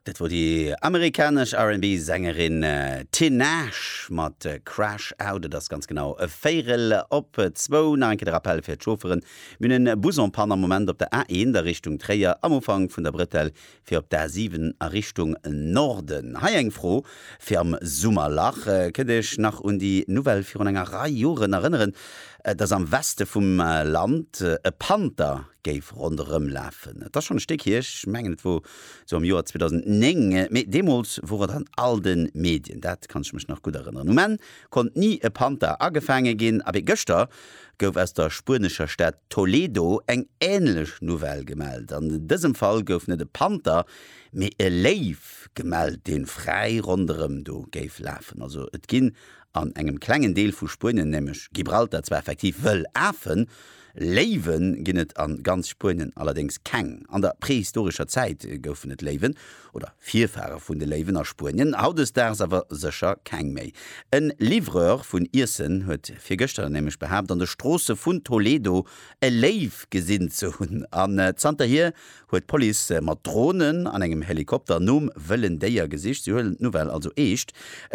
Dat wor déi amerikanesch RnB-Sängerin Tinashe mat Crash Out. Et ass ganz genau véirel op zwou. Nach eng Kéier de Rappell fir d'Chaufferen, Mir hunn en Bus en Panne am Moment op der A1 a Richtung Tréier am Ufank vun der Brettell fir op d'A7 a Richtung Norden. Hei eng Fro fir am Summerlach, Kënnt Dir Iech nach un déi Nouvelle virun enger Rei Joren erënneren, dass am Weste vum Land e Panther géif ronderëm lafen. Et ass schonn e Stéck hier, ech mengen et wor esou am Joer 2009, mee deemools wor et an all de Medien, dat kann ech mech nach gutt erënneren. Um Enn konnt ni e Panther agefaange ginn, abee gëschter gouf aus der spuenescher Stad Toledo eng änlech Nouvelle gemellt. An dësem Fall gouf net e Panther, mee e Léiw gemellt, dee fräi ronderëm do géif lafen. Also et ginn an engem klengen Deel vu Spuenien, nämlech Gibraltar, zwar effektiv wëll Afen, Léiwe ginn et a ganz Spuenien allerdéngs keng. An der prehistorescher Zäit goufen et Léiwen, oder Virfahre vun de Léiwen, a Spuenien, hautdesdaags awer sécher keng méi. E Livreur vun Iessen huet virgëschter nämlech behaapt, an de Stroosse vun Toledo e Léiw gesinn ze hunn. An zanterhier huet d'Police mat Dronen an engem Helikopter nom wëllen Déier gesicht. Si huelen d'Nouvelle also eescht.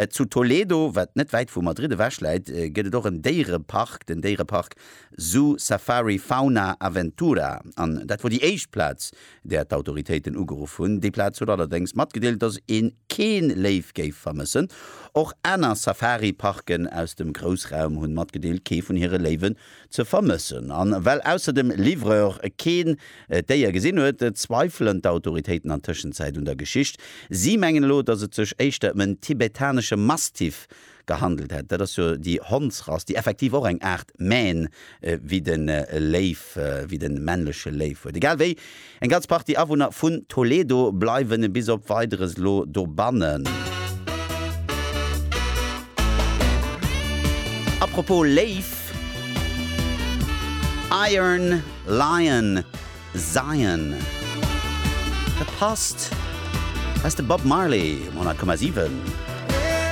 Zu Toledo, wat net wäit vu Madrid ewech läit, gëtt et och en Déierepark, den Déierepark Zoo Safari Fauna Aventura, an dat wor déi éischt Plaz, där d'Autoritéiten ugeruff hunn. Déi Plaz huet allerdéngs matgedeelt, dass een keen Léiw géif vermëssen. Och aner Safari-Parken aus dem Groussraum hunn matgedeelt, kee vun hire Léiwen ze vermëssen. An well ausser dem Livreur keen d'Déier gesinn huet, zweifelen d'Autoritéiten an Tëschenzäit un der Geschicht. Si mengen elo, dass et sech éischter em en tibetanesche Mastiff gehandelt hätt. Dat ass jo déi Hondsrass, déi effektiv och eng Aart Mähn wéi de Léiw, wéi de männleche Léiw huet. Egal wéi, eng ganz Partie Awunner vun Toledo bleiwen bis op Weideres elo dobannen. Apropos Léiw, Iron Lion Zion, dat passt, dat ass de Bob Marley um 100,7.